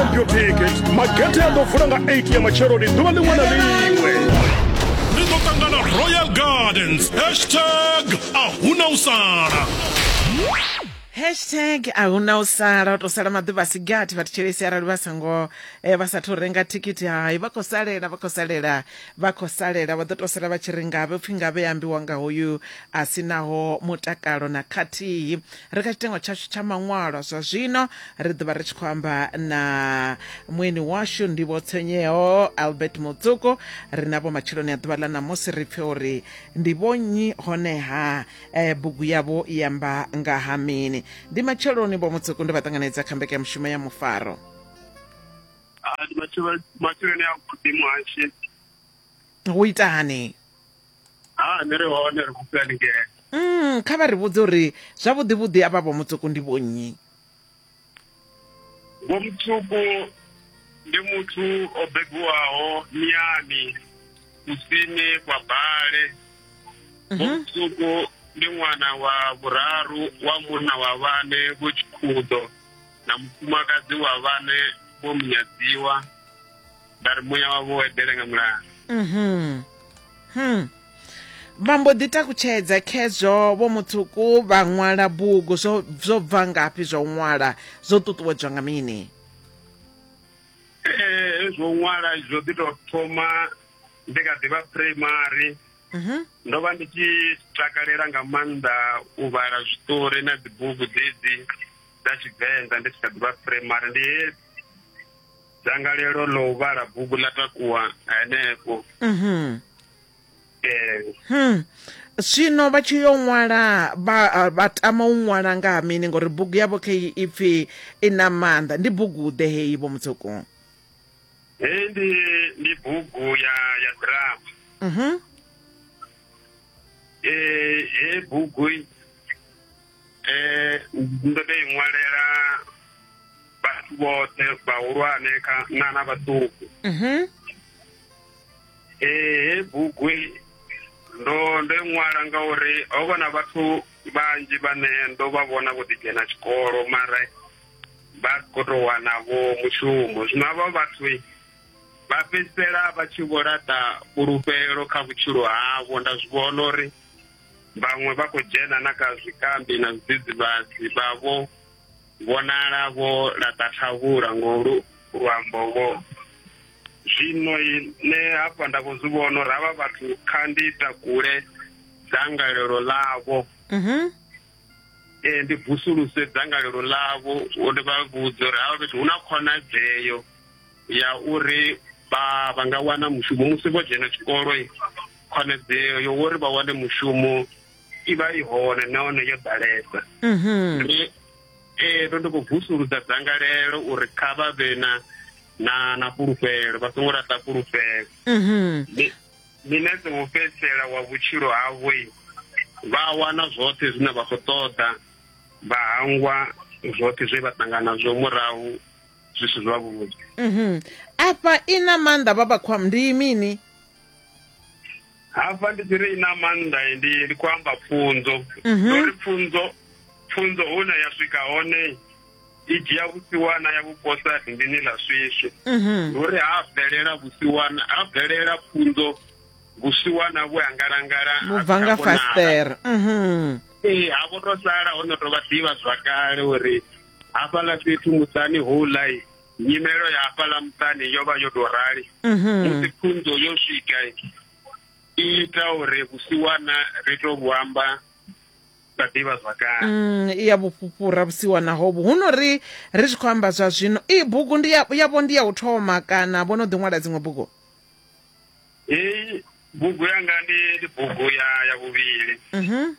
Ombio ticket magete a ḓo vula nga 8 ya matsheloni ḓuvha ḽiṅwe na ḽiṅwe ri ḓo ṱangana royal gardens hashtag a huna u sala hashtag a hu na u sala u to sala maḓuvha a si gathi vhathu tshelesi arali vha songo eh, vha sathu renga thikhithi hai vha khou salela vha khou salela vha khou salela vha ḓo to sala vha tshi ri ngavhe upfhi ngavhe ya ambiwa nga hoyu a si naho mutakalo na khathihi ri kha tshitengo tshashu tsha maṅwalwa zwa zwino ri ḓovha ri tshi khou amba na mueni washu ndivho tsenyeho albert mutsuko ri navho matshiloni a ḓuvha ḽa ṋamusi ri pfe uri ndi vhonnyi honeha eh, bugu yavho i amba nga ha mini ndi matsheloni vho mutsuko ndi vha ṱanganedza kha mbekanyamushumo ya mufaro Ah, ndi matshelo- matshiloni a vhuḓi muhashi u itani ha ni ri hone ri khou haningei mm kha vha ri vhudze uri zwavhuḓi vhuḓi avha vho mutsuku ndi vhonnyi vho mutsuku ndi muthu o bebiwaho miyani kusini kwa bale vho mhm. mutsuku ndi ṅwana wa vhuraru wa munna wa vhane vho tshikhudo na mufumakadzi wa vhane vho munyadziwa vha ri muya wavho wo eḓele nga mulalo mhm hmm vha mbo ḓi takutshedza khezwo vho muṱuku vha ṅwala bugu zwo zwo bva ngafhi zwa u ṅwala zwo ṱuṱuwedzwa nga mini ee zwo ṅwala zwo ḓi tou thoma ndi kha ḓivha primary mhm ndo vha ndi tshi takalela nga maanḓa u vhala zwiṱori na dzibugu dzedzi dza tshivenḓa ndi tshi kha ḓivha primary ndi he dzangalelo ḽo u vhala bugu ḽa takuwa henefho mhm. Hmm. zwino vha tshi yo ṅwala vha tama u ṅwala nga ha mini ngori bugu yavho kha i pfhi i na maanḓa ndi bugu ḓe heyi vho mutsuku heyi ndi ndi bugu ya ya drama mhm. eh, heyi bugu eh ndo tou i ṅwalela vhathu vhoṱhe vhahulwane kha- na na vhaṱuku Mhm. eh he bugu i, ndo ndo i ṅwala ngauri ho vha na vhathu vhanzhi vhane ndo vha vhona vho ḓi dzhena tshikolo mara vha si khou tou wana vho mushumo zwino havha vhathu i, vha fhedzisela vha tshi vho laṱa fhulufhelo kha vhutshilo havho nda zwi vhona uri vhaṅwe vha khou dzhena na kha zwikambi na zwidzidzivhadzi vha vho vhonala vho laṱa thavhula ngo luambo vho zwino ne hafha nda vho zwi vhono ra vha vhathu kha ndi takule dzangalelo ḽavho mhm. eh, ndi vusuluse dzangalelo ḽavho uri vha vhudze uri havha fhethu hu na khonadzeo ya uri vha vha nga wana mushumo musi vho dzhena tshikolo khonadzeo yo uri vha wane mushumo i vha i hone nahone yo ḓalesa mhm. ee ndo ndi khou vusuludza dzangalelo uri kha vha vhe na na na fhulufhelo vha songo laṱa fhulufhelo mhm. nṋe ḓo u fhedzisela wa vhutshilo havho vha wana zwoṱhe zwine vha khou ṱoḓa vha hangwa zwoṱhe zwe vha ṱangana zwo murahu zwi si zwavhuḓi mhm. afha i na maanḓa baba khwam ndi mini hafha ndi tshiri i na maanḓa ndi ndi khou amba pfunzo mhm. uri pfunzo pfunzo hune ya swika hone i dzhia vhusiwana ya vhuposa rinḓini ḽa swiswi mhm. ndi uri ha bvelela vhusiwana ha bvelela pfunzo vhusiwana vhu angalangala vhubva nga fastere ee ha vho to sala ho no to vha ḓivha zwakale uri hafhaḽa fhethu muṱani houḽa nyimelo ya hafhaḽa muṱani yo vha yo tou rali mhm. musi pfunzo yo swika i ita uri vhusiwana ri tou vhu amba sa ḓivha zwakale mm, i ya vhufhufhura vhusiwana hovhu hu no ri ri tshi khou amba zwa zwino i bugu ndi yavho ndi ya u thoma kana vho no ḓi ṅwala dziṅwe bugu heyi bugu yanga ndi bugu ya ya vhuvhili mhm.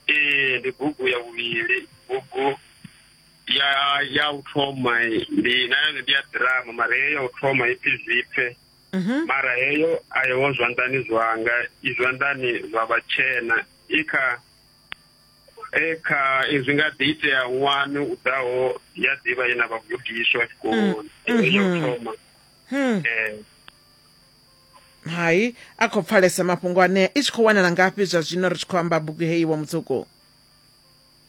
ee ndi bugu ya vhuvhili bugu ya ya u thoma ndi na yone ndi ya ḓirama mara heyo ya u thoma ipfi zwipfe mhm. mara heyo a yewo zwanḓani zwanga i zwanḓani zwa vhatshena i kha e kha izwi nga ḓi itea ṅwani u ḓaho ya ḓivha ye na vhagudiswa tshikoloni mm, ya u mhm. thoma hmm. ee hai a khou pfalesa mafhungo anea i tshi khou wanala ngafhi zwa zwino ri tshi khou amba bugu heyi wa mutsuku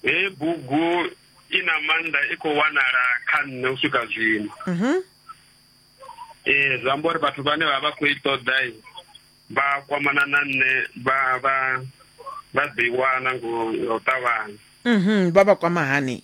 heyi bugu i na maanḓa i khou wanala kha nṋe u swika zwino mhm. ee zwi amba uri vhathu vhane vha vha khou i ṱoḓa vha kwamana na nṋe vha vha vha ḓi wana ngo ṱavhanya mhm, vha vha kwama hani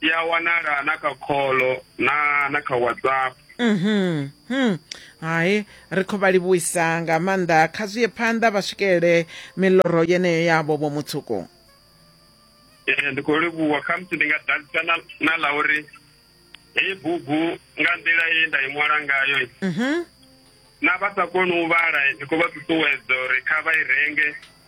i a wanala na kha kholo na na kha whatsapp mhm hmm hai ri khou vha livhuisa nga maanḓa kha zwi ye phanḓa vha swikelele miloro yeneyo yavho vho mutsuku ee ndi khou livhuwa khamusi ndi nga ḓadzisa na na ḽa uri heyi bugu nga nḓila ye nda i ṅwala ngayo mhm na vha sa koni u vhala ndi khou vha ṱuṱuwedza uri kha vha i renge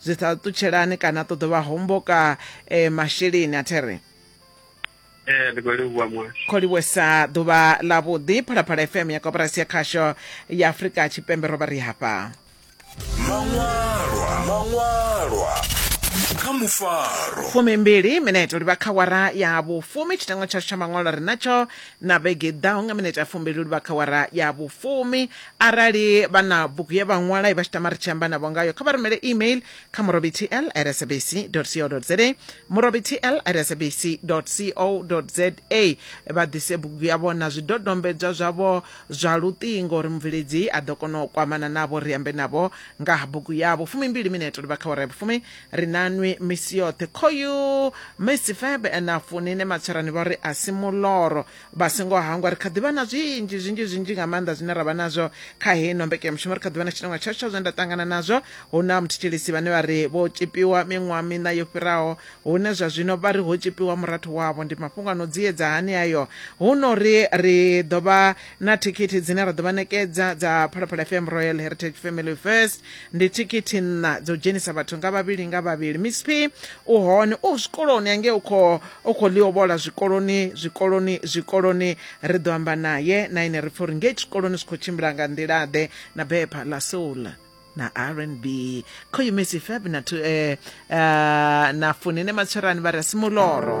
zwi sa ṱutshelani kana ṱo ḓo vha homboka um masheleni a there ee ndi khou livhuwa muhasho kho livhuwesa ḓuvha ḽa vhuḓi phalaphala fm ya koporasi ya khasho ya afurika tshipembe ro vha ri hafha maṅwalwa maṅwalwa kha mufaro fumimbili minete uri vha kha wara ya vhufumi tshitengo tshashu tsha maṅwalo ri natsho na vhege ḓaho nga minete ya fumbili uri vha kha wara ya vhufumi Arali vha na bugu ye vha ṅwala i vha tshi tama ri tshi amba navho ngayo kha vha rumele email kha murobitl at sabc co za murobitl at sabc co za vha ḓise bugu yavho na zwidodombedzwa zwavho zwa luṱingo uri mubveledzi a ḓo kona u kwamana navho ri ambe navho nga ha bugu yavho fumimbili mineto livha kha wara ya vhufumi ri na nwi misi yoṱhe khoyu misi febe na funine matswerani vha uri a si muloro vha singo hangwa ri kha ḓivha na zwinzhi zwinzhi zwinzhi nga maanḓa zwine ra vha nazwo kha heyi no mbekanyamushumo ri kha ḓivha na tshitongwa tsha tsha zwine nda ṱangana nazwo hu na muthetshelisi vhane vha ri vho tshipiwa miṅwaha miṋa yo fhiraho hune zwa zwino vha ri ho tshipiwa murathu wavho ndi mafhungo a no dziedza hani ayo hu no ri ri ḓo vha na thikhithi dzine ra ḓo vha nekedza dza phalaphala fm royal heritage family first ndi thikhithi nṋa dzo dzhenisa vhathu nga vhavhili nga vhavhili miss p u hone u zwikoloni ange u khou u khou ḽiovhola zwikoloni zwikoloni zwikoloni ri ḓo amba naye na ine ri pfha uri ngei tshikoloni zwi khou tshimbila nga nḓilaḓe na bepha la soul na rnb khoyu messi fab na, tu, eh, uh, na funine matswerani vha re a simuloro